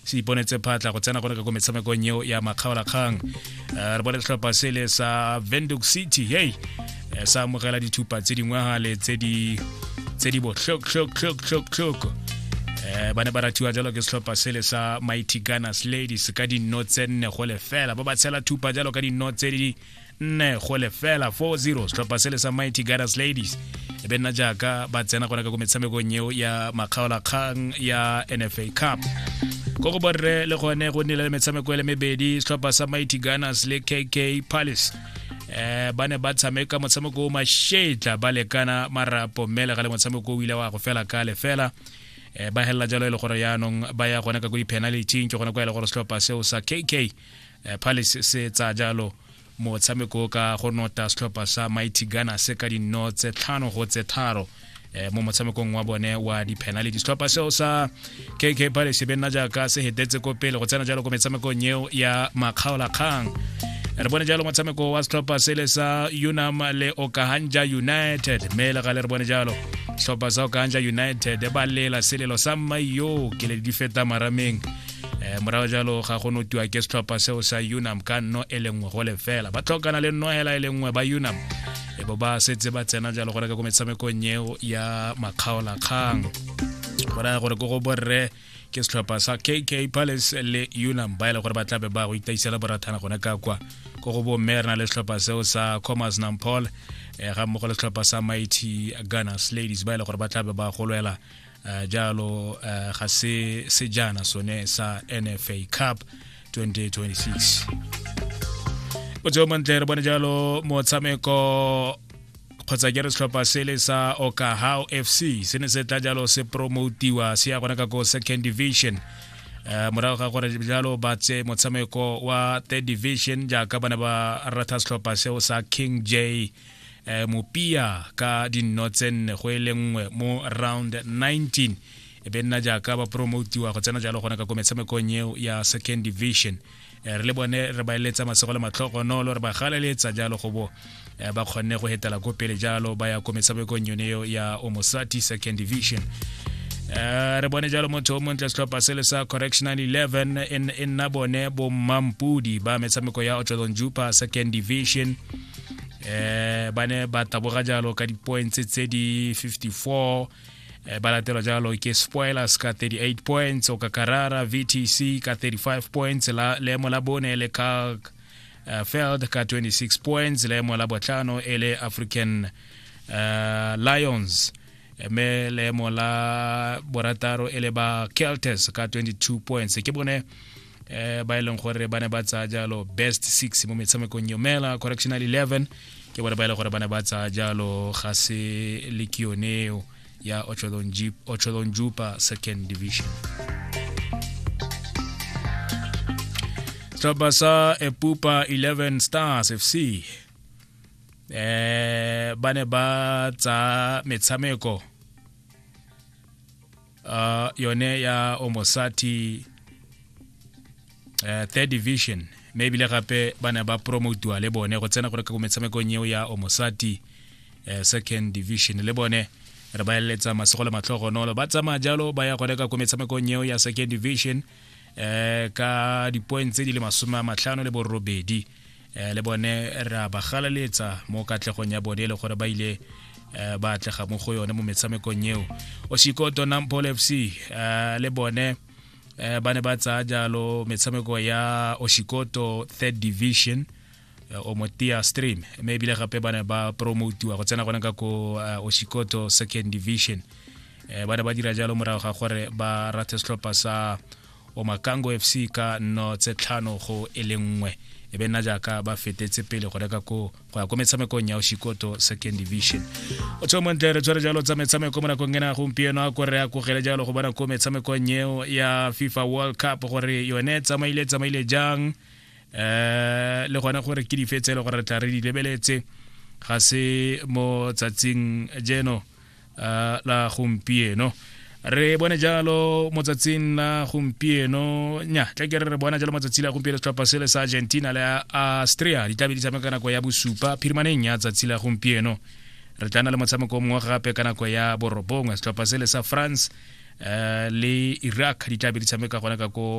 se iponetse phatla go tsena gone ka ko metshamekong eo ya makgaolakgang eh, re bone setlhopha sele sa venduc city hey eh, sa amogela dithupa tse dingwe gale tse di tse di botlhoktlhoktlhoktlhoktlhoko eh, ba ne ba rathiwa jalo ke setlhopha sele sa mighty gunners ladies ka dinno tse nne go lefela ba ba tshela thupa jalo ka dinno tse di nne go lefela 40 setlhopha se le sa mighty goddess ladies e be nna jaaka ba tsena gona ka ko metshamekong eo ya makgaolakgang ya nfa cup ko go borre le gone go nnile le metshameko e le mebedi setlhopha sa mighty gunners le kk palace eh ba ne ba tshameka motshameko o mashetla ba lekana marapo mme le ga le motshameko o ile wa go fela ka lefela eh ba helela jalo e le gore yaanong ba ya gone ka ko di-penality ke gone kwa e le gore setlhopha seo sa kk eh, palace se tsa jalo motshameko ka go nota setlhopha sa mighty ghana se ka dinno tse tlhano go tse tharo eh, mo motshamekong wa bone wa di-penality setlhopha seo sa kk palace be nna jaaka se hetetse ko pele go tsena jalo ko metshamekong eo ya makgaolakgang re bone jalo motshameko wa setlhopha sele sa unam le okahanja united mme le gale re bone jalo setlhopha sa okahanja united ba lela selelo sa mmaio ke le di feta marameng um morago jalo ga go notiwa ke setlhopha seo sa unam ka nno e le nngwe go le fela ba tlhokana le nno hela e le nngwe ba unam e bo ba setse ba tsena jalo go reka ko metshamekong eo ya makgaolakgang go raya gore ko go borre ke setlhopha sa kk palace le unam ba e le gore ba tlabe ba go itaisela borathana gone ka kwa ko go bomme re na le setlhopha seo sa commerce nampol um eh, ga mmogo le setlhopha sa mighty gunners ladies ba e le gore ba tlabe ba golwela uh, jalo uh, ga se sejana sone sa nfa cup 2026 botseo montle re bone jalo motshameko kgotsa ke re setlhopha sele sa okahao fc se ne se tla jalo se promotiwa se ya gona ka ko second division Eh, morago ga gore jalo ba tse motshameko wa third division jaaka bana ba ratha setlhopha seo sa king j eh, mopia ka dinno tse nne go e le nngwe mo round 19 e be nna jaaka ba promotiwa go tsena jalo gone ka ko metshamekong eo ya second division eh, re le bone re ba eletsa masego le matlhogonolo re ba galeletsa jalo go bo eh, ba kgonne go hetela ko pele jalo ba ya ko metshamekong yone eo ya omosati second division Eh, re bone jalo motho o montle setlhopha se le sa correctional 11 e nna bone bommampudi ba metshameko ya otlodon jupa second division eh ba ne ba taboga jalo ka di-points tse di 54 eh, ba latelwa jalo ke spoilers ka 38 points o ka karara vtc ka 35 points la leemo la bone le ka uh, feld ka 26 points leemo la botlhano e le african uh, lions mme leemo la borataro e le ba keltes ka 22 points ke bone eh ba e leng gore ba ne ba tsaya jalo best six mo metshamekong yomela correctional 11 ke bone ba e leng gore ba ne ba tsaya jalo ga se le ke yoneo ya otsholong jupa second division setlhopha sa epupa 11 stars fc eh ba ne ba tsa metshameko uh, yone ya omosati uh, third division mme ebile gape ba ne ba promotiwa le bone go tsena gore ka ko metshamekong eo ya omosati uh, second division le bone re ba eletsa masego le matlhogonolo ba tsamaya jalo ba ya go reka ko metshamekong eo ya second division eh ka dipoeng tse di le masome a matlhano le borobedi eh le bone ra ba galaletsa mo katlegong ya bone e le gore ba ile eh, ba atlega mo go yone mo metshamekong eo osikoto nampole fc eh, le bone eh, ba ne ba tsaya jalo metshameko ya osikoto third division Eh, o mo tia stream mme ebile gape ba ne ba promotiwa go tsena gone ka ko eh, osikoto second division eh, ba ne ba dira jalo morago ga gore ba rathe setlhopha sa omakango f c ka nno tse tlhano go e le nngwe e be nna jaaka ba fetetse pele go reka ko go ya ko metshamekong ya osikoto second division o tsho montle re tshwere jalo tsa metshameko mo nakong ena gompieno a kore a kogele jalo go bona ko metshamekong eo ya fifa world cup gore yone tsamaile tsamaile jang eh le gona gore ke dife tse le gore re tla re di lebeletse ga se mo tsatsing jeno eh, la gompieno re bone jalo mo tsatsing la gompieno nya tle ke re re bona jalo mo tsatsi la gompieno setlhopha sele sa argentina le austria di tlabe di tshameka nako ya bosupa phirimaneng ya tsatsi la gompieno re tla na le motshameko mongwe gape ka nako ya borobongwe setlhopha sele sa france eh, le iraq di tlabe di tshameka gona ka ko